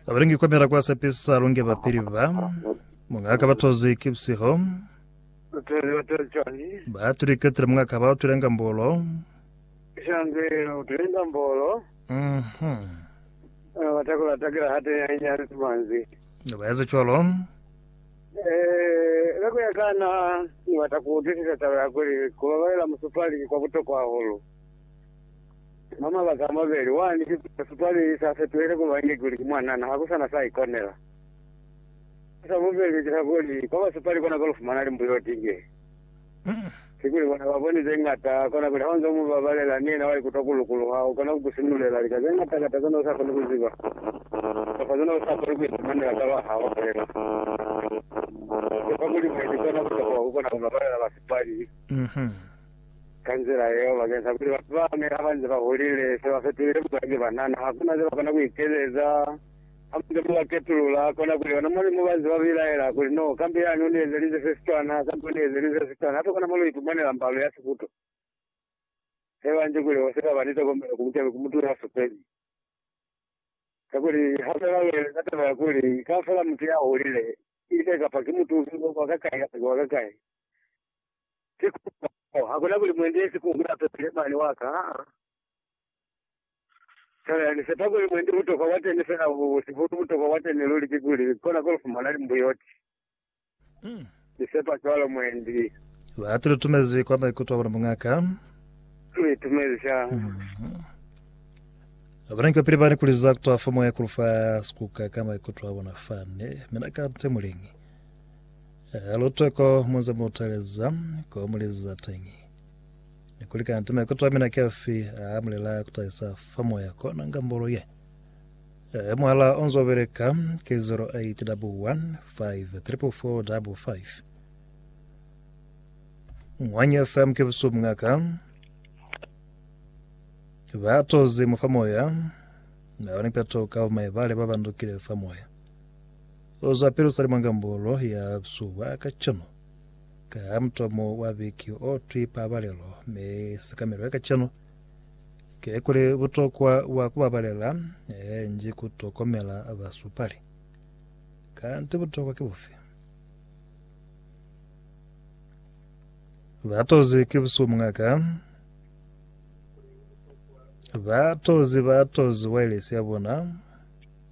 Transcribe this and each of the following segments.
Abalingi kwamela kwa sepisa lunge bapili ba mungaka batozi kipsiho Utele utele chani. batuli ketile mungaka ba utule ngambolo Shange utele ngambolo. mhm Watakula takila hate ya inyani tumanzi. baeza cwalo Eh, lako ya kana ni wata ku utisisa taba ya kuli kubabalela musupali ki kwa butokwa hahulu. Mwa mabaka amabeli, wani ki kuba sipaleli sa fetohile kuba inge kuli ki mwanana, ha ku sa na sa ikonela. Sa sa bubeli ki sa kuli, kwa ba sipali kona ko lu fumana limbuyo ti nge. Ki kuli bona ba boni ze ñata, kona kuli ha u nze u mu babalela, ni yena wa ikutwa ku lukuluha, u kona ku ku sinulela lika ze ñata kata ze ne u sa koni ku ziba, kamba ze ne u sa koni ku ifumanela ka lwa ha u bolela. Ki kwa kuli mwendi kona ku tokoha ku kona ku babalela ba sipali. Ka nzila yeo, bakeñisa kuli batu bane ha ba nze ba hulile, se ba fetulile bupaki ba na, na ha ku na ze ba kona ku ikezeza. Ha mu nze mu ba ketulula, kona kuli ona mwa ni mo ba nze ba bilaela kuli, No, kambe yani u ni ezelize se sicwana, kambe u ni ezelize se sicwana, hape kona mo lu ipumanela mbalo ya siputo. Se ba nji kuli ho si ka ba ni tokomelo ku bucabi ku mutu ya supezi. Kakuli ha fela lu eleza taba ya kuli kaufela mutu ya hulile, ki ile kapa ki mutu ufi, wa kwa kakai, hape ki wa kakai, Ki kukupa mo, hakuna kuli muendelezi ku hula pepele mane wa ka, aa. Fela ni sepa kuli mwendi butokwa bwa teni fela bu sihulu, butokwa bwa teni luli ki kuli kona ko lu fumana limbuyoti. Ni sepa cwalo mwendi. Ba tu litumezi kwa maikuto a bona, Muñ'a ka. Tu litumezi sha. Babanangi ba pili ba ni kuliza kutwa fa moya ku lu fa sikuka ka maikuto a bona fani. Mina ka nte muliñi. Lutoko munze mutaleza ko muliza teñi ni kuli kanti maikuto amina ki afi a mulela kutahisa fa moya kona ngambolo ye. Muhala onzo beleka ki 08 double 1 5 triple 4 double 5. Ngwanyo FM ke busubu ngaka ba tozi mufa moya na wani peto ka maibale ba bandukile fa moya. Oza Pilusani mwa Ngambolo ya Suba ka cwalo. Ka mutomo wa viki o twi Pabalelo, mi sikamelo ya kacenu ki kuli butokwa bwa ku babalela nji ku tokomela basupali. Kanti butokwa ki bufi? Ba tozi ki busihu mungaka. Ba tozi ba tozi wailesi ya bona.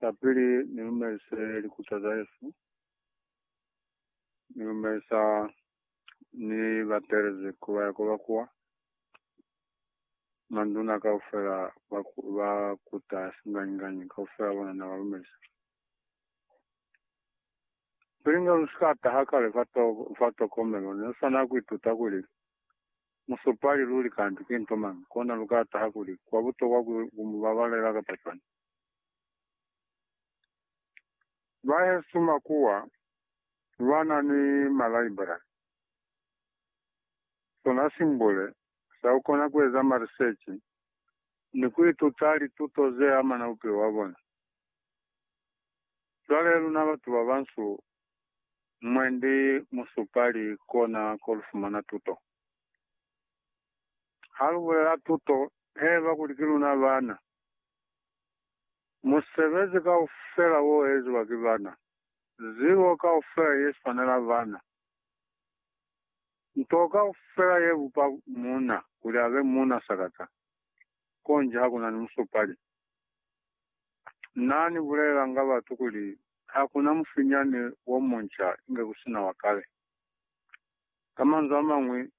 Kapili ni lumelise likuca za Yesu, ni lumelisa ni batelezi ku ba yako ba kuwa. Manduna kaufela ba, ba kuta singanyi-nganyi, kaufela bona na ba lumelisa. Pilinga lu sika taha kale fa, to, fa tokomelo, ne lu swana ku ituta kuli musupali luli kanti ki nto mañi, kona lu ka taha kuli kwa butokwa ku, ku mu babalela kapa cwani. Bahesu makuwa ba na ni malaibrari, sona simbule sa ku kona ku eza marisechi ni ku ituta lituto ze amana bupilo bwa bona. Cwale luna batu ba bansu, mwendi musupali kona ko lu fumana tuto. ha lu bulela tuto heba kuli ki luna bana. Musebezi kaufela o eziwa ki bana, zibo kaufela ye swanela bana, nto kaufela ye bupa muuna kuli abe muuna sakata, konji ha ku na ni musupali. Na ni bulelanga batu kuli ha ku na mufinyani wo munca inge ku si na wa kale. Ka manzwi a mañwi,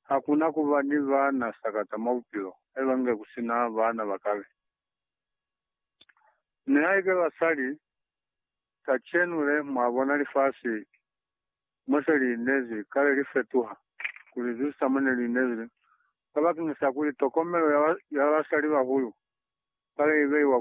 ha ku na ku ba ni baana sakata mwa bupilo haiba nge ku si na baana ba kale. Nihaike basali kacenu le mwa bona lifasi mo se li inezi kale li fetuha ku li zwisa mo ne li inezi le, kabakeñisa kuli tokomelo ya basalibahulu kale i beiwa kwa